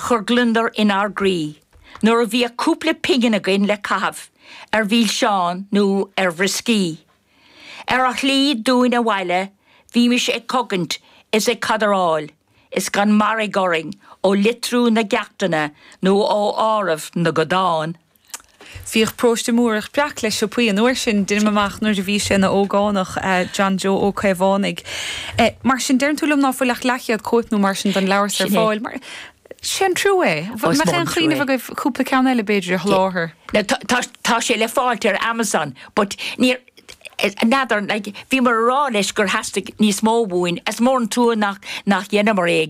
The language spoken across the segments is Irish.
Chuireadh gliondar inár gcroí nuair a bhíodh cúpla pingin againn le caitheamh ar mhilseáin nó ar bhrioscaí. Ar an slí dúinn abhaile bhímis ag cogaint is ag cadaráil is gan mairg orainn ó litriú na gceachtanna nó ó áireamh na gcodán. Bhíodh Paróiste Mórdhach breac le siopaí an uair sin, deinim amach, nuair a bhí sé ina ógánach, John Joe Ó Caomhánaigh. Mar sin, deireann tú liom ná fuil ach leathchéad cóip nó mar sin den leabhar so ar fáil. Sin é. Sin trua é. Ó, is mór an trua é. An bhfuil aon chuimhneamh agaibh cúpla ceann eile b'fhéidir a sholáthar? Tá sé le fáilt ar Amazon but níor, n'fheadar, like, bhíomar a rá leis gur theastaigh níos mó uainn, is mór an trua nach, nach dheineamar é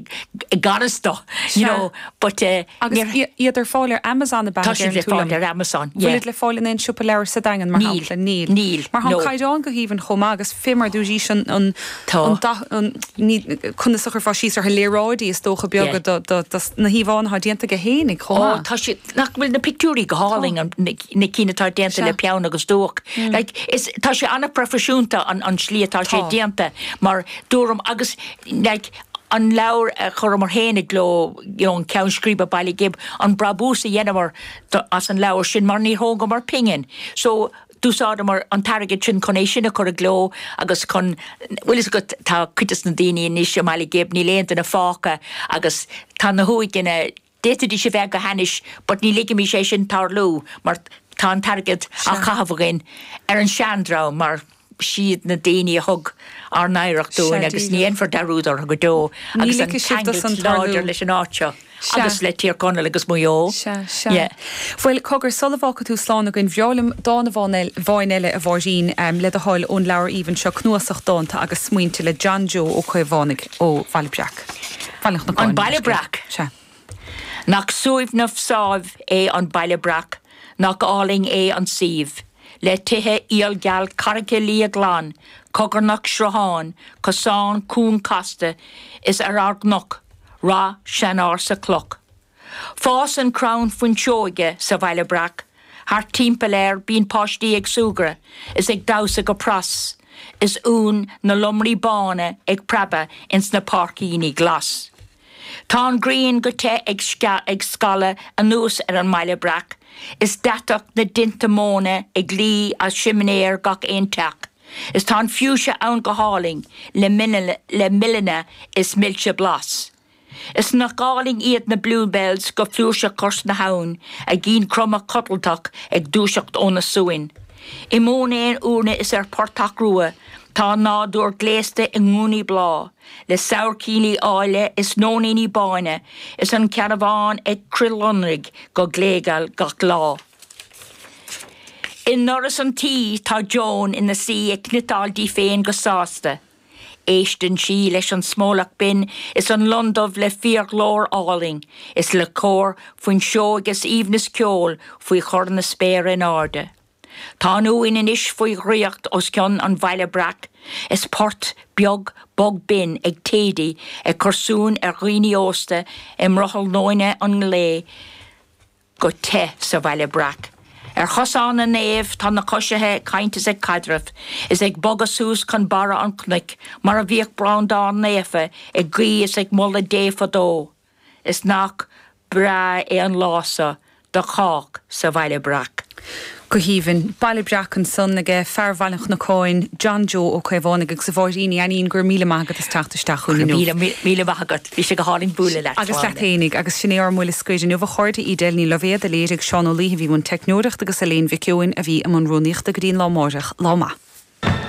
i gceart dó, you know, but eh, Agus níl siad ar fáil ar Amazon a deireann tú liom. Tá siad le fáil ar Amazon, Bhfuil yeah. iad le fáil in aon siopa leabhar sa Daingean, mar Níl, shampla? Níl. níl, Mar tá an no. caighdeán go haoibhinn chomh maith agus fimar do dhís an, an, Tá. an da, an, ní, conas a chuirfeá síos orthu, léaráidí is dócha beaga Yeah. do, do, do, na híomhánna atá déanta aige féinig chomh Ó, maith. tá siad, nach bhfuil na pictiúirí go hálainn, an, na cinn atá déanta le peann agus dúch. Like, is, tá sé an-phroifisiúnta an, an tslí atá sé déanta mar a dúrt agus, like, an leabhar a chuireamar féin i gcló, you know, an ceann scríbe Baile Ghib, an brabús a dheineamar do, as an leabhar sin mar níor thógamar pingin. So, d'úsáideamar an t-airgead sin chun é sin a chur i gcló agus chun, bhuel is go, tá cuid de na daoine anois i mBaile Ghib, níl aon duine fágtha agus tá na huaigheanna, D'fhéadfaidís a bheith go hainnis but ní ligimís é sin tarlú mar tá an t-airgead á chaitheamh againn ar an seandream mar is iad na daoine a thug ár n-oidhreacht dúinn agus ní dhéanfar dearúd orthu go deo agus an ceangal láidir leis an áit seo agus le Tír Chonaill agus Maigh Eo. Bhuel, cogar, sula bhfágfaidh tú slán againn, ba bhreá liom dán amháin eile, a Mháirín, le do thoil, ón leabhar aoibhinn seo, Cnuasach Dánta agus Smaointe le John Joe Ó Caomhánaigh ón mBaile Breac. An Baile Breac. Sea. Nach suaimhneach sáimh é an Baile Breac, nach álainn é an suíomh, le tithe aolgheal carraice liath glan cogarnach srutháin cosáin cúng casta is ar an gcnoc ráth seanársa cloch, Fásann crann fuinseoige sa Bhaile Breac, thart timpeall air bíonn páistí ag súgradh is ag damhsa go pras, is uain na lomraí bána ag preabadh ins na páircíní glas. Tá an ghrian go te ag scaladh anuas ar an mBaile Breac, is deatach na dtinte móna ag luí as simné ar gach aon teach, is tá an fiúise ann go hálainn le mil ann is milse blas. Is nach álainn iad na bluebells go flúirseach cois na habhann, a gcinn cromtha codlatach ag dúiseacht óna suan. I mbánta uaine is ar phortach rua tá an nádúr gléasta i ngúnaí bláth, le sabhaircíní áille is nóiníní bána, is an ceannabhán ag crithlonrú go gléigeal gach lá. I ndoras an tí tá Joan ina suí ag cniotáil di féin go sásta. Éisteann sí leis an smólach binn is an lon dubh le fíorghlór álainn, is le cór fuiseoige is aoibhneas ceoil faoi chur na spéire in airde. Tá an uain anois faoi dhraíocht os cionn an Bhaile Breac, is port beag bog binn ag Thady ag cur suain ar dhaoine aosta i mbrothall nóine an lae, go te sa Bhaile Breac. Ar chosán na naomh tá na coisithe ag caint is ag caidreamh, is ag bogadh suas chun barr an chnoic mar a bhíodh Breandán Naofa ag guí is ag moladh Dé fadó. Is nach breá é an lá so do chách sa Bhaile Breac. Go haoibhinn. Baile Breac ansan aige fear Bhaile an Chnocáin, John Joe Ó Caomhánaigh, agus a Mháirín Ní Fhainnín, go raibh míle maith agat as teacht isteach chugainn inniu. Go raibh míle maith agat. Bhí sé go hálainn bualadh leat, agus leat fhéinig. Agus sin é ár mbuille scoir inniu, a chairde, Edel Ní Loibhéad, a léirigh, Seán Ó Laoithe a bhí i mbun teicneoireachta agus Elaine Mhic Eoin a bhí i mbun rúnaíochta. Go dtí an lá máireach, lá maith.